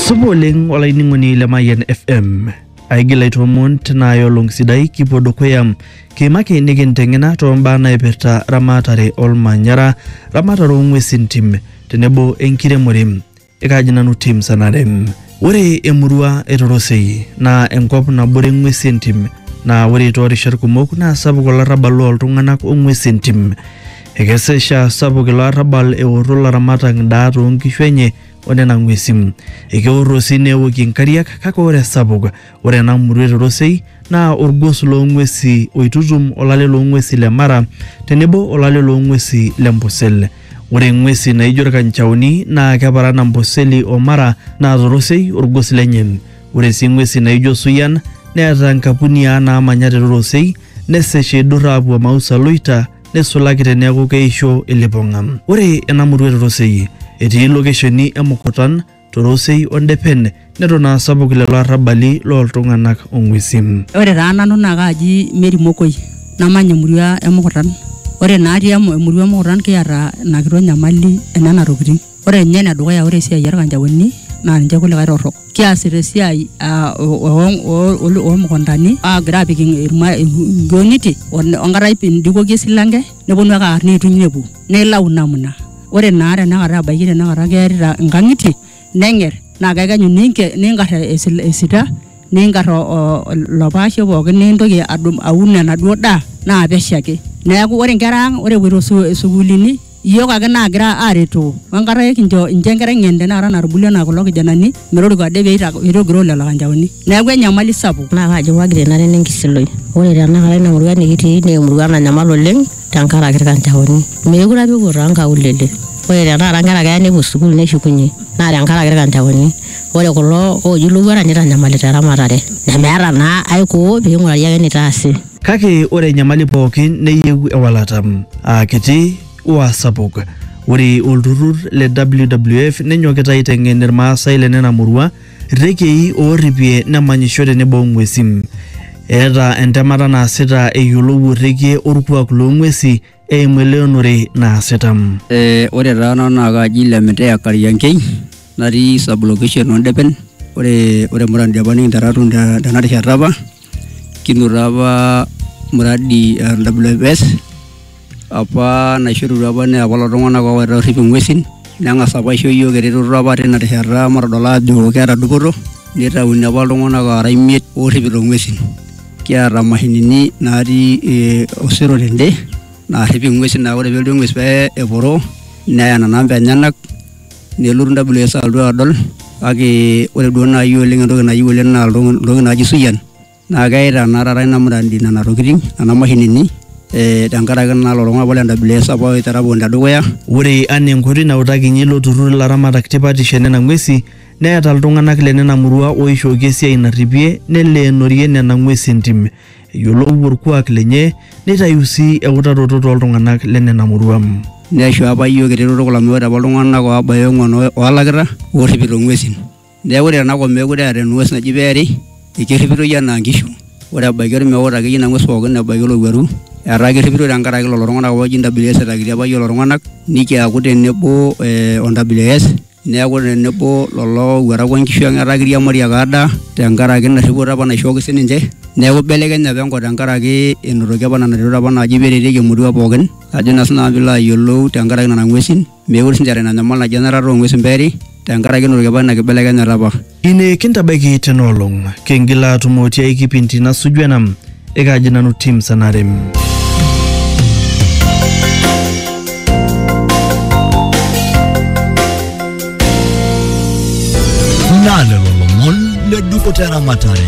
Supa oleng olainining'oni le Mayian FM. Aigil aitoomon tinaaya olong sidai kipuo dukuya kiimaki nikinteng'ena toombaa naipirta ramatare olmanyara, ramatare oong'uesi entim tenebo enkiremore. Ekaaji nanu Tim Sanare. Ore emurua e Torosei naa enkop nabore ng'uesi entim naa ore toorishat kumok naa sapuk olarrabal looltung'anak ong'uesi entim. Ekes eisha sapuk ilo arrabal eorro laramatak ndaa too nkishu enye o nena ng'uesin. Ekeorro sii neewokie nkariak kake ore esapuk ore ena murua e Torosei naa olgos loo ng'uesi oitutum olale loo ng'uesi le Mara tenebo olale loo ng'uesi le Mbusel. Ore ng'uesi naaijo ilkanchaoni naa keparan Amboseli o Mara naa Torosei olgos lenye. Ore sii ng'uesi naaijo Suyian neeta nkapuniaa naamanya te Torosei nesesh eidurr aapuo Mausa Loita neisulaki teneaku keisho ilipong'a. Ore ena murua e Torosei etii lokesheni e Mukutan, Torosei o Ndepen neton aa sapuk lelo arrabali loo ltung'ana o ng'uesi. Ore taa nanu naa kaaji Mary Mokoi namanya emurua e Mukutan. Ore naa atii emurua e Mukutan kiata ina kitok nyamali e nena tokitin. Ore ninye ene dukuya ore esiai orkanjaoni naa ninche kulikae torrok. Kiasita esiai aa omukuntani aagira aapik inkionitie enkata indikoki esilanke neponu ake aar neituny nepuo naa ilau namna. Ore naa tenakata ebaiki tenakata kearita inkangitie nenger naa kekenyu ningar esita ningar ilo paashe pookin nintoki aun enaduo daa naa pesho ake. Neeku ore inkera ang epoito isukuulini Iyiook ake naagira aaretoo o enkata ekincho inchoo enkerai ng'en tenakata natubulua anaa kulo kijanani metoriko ade pee eita- pee eitogiroo lelo kanjaoni. Neeku enyamali sapuk. Naa kaji wagira ina nena enkisiloi? Ore tenakata ina murua nikitii naa emurua nanyamal oleng tenkaraki ilkanjaoni. Meekure apa epuo too nkaulele. Ore tenakata nkera keya nepuo sukuul neshukunye naa tenkaraki ilkanjaoni. Ore kulo ooji ilowuarak neitanyamalita eramatare nemeeta naa aikoo pee eing'urari ake eneitaasi. Kake ore enyamali pooki neyieu ewalata, aa kiti o aa sapuk. Ore olturrur le WWF nenyokita aiteng'en Ilmaasai le nena murua rrekiei oorripie nemanyisho tenebo o ng'uesi. Eeta entemata naasita eyiolou orrekie olkuak loo ng'uesi eimu eleonore naasita. Eh, ore taa nanu naa kaaji Lemiteya Kariankei natii sub location Ondepen ore ore muradi apa nikinterra atum te- tena rishata apa kinoto apa muradi eh, WFS apa naishorutua apa naa apa lelo tung'anak oowaita orrip ing'uesin neng'as apa aisho iyiok eretoto apa tina rishata matodol aajo keeta dupoto nitauni apa iltung'anak aara imiet orripito ing'uesin. kiata mashinini natii eh, osero tende naarrip ing'uesi naa ore pelotu eng'ues pee eporoo neya nena amba enyenak nelotu WS alotu adol kake ore duo naaji oleng entoki nayieu oleng naa ilto- iltokitin naaji suyian naa keita naa taata ina muradi nena tokitin nena mashinini eh, tenkaraki naa lelo tung'anak le WS apa oitera pookin tedukuya ore anaa enkoitoi nautakinyie ilo turrur ilaramatak tipatisho enena ng'uesi Neeta iltung'anak le nena murua ooishooki esiai narripie neleenorie nena ng'uesi entim. Eyiolou olkuak lenye neitayu sii eutaroto too ltung'anak le nena murua. Neisho apa iyiook eretoto kulo amu ore apa iltung'anak oobaya ong'uan oolakita oorripito ng'uesin. Neeku ore tena kop meekure eeta eng'ues naji peeri, ekerripitoi anaa nkishu. Ore ebaiki olmeut akeyie ina ng'ues pooki ebaiki olowuaru etaa kerripitoi tenkaraki lelo tung'anak apa ooji NWS etakitia apa iyiook lelo tung'anak nikiaku tenebo o NWS. neaku tenebo lolo owuarak onkishu ang etaa kiriamari ake adaa tenkaraki ina rripoto apa naishooki sininche neeku ibelekenye apa enkop tenkaraki enotoki apa nena retot apa naaji peretieki emurua pookin ajo naa sinanu piilo ayiolou tenkaraki nana ng'uesin mekure sinche eeta ina nyamal naji enarata ong'uesin peeri tenkaraki enotoki apa ina kibelekenyata apa. Ine kintabaiki tena olong, kingil aatumo tiai kipindi nasuju ena, ekaaji nanu Tim Sanarem. Naa lelo lomon le dupoto eramatare.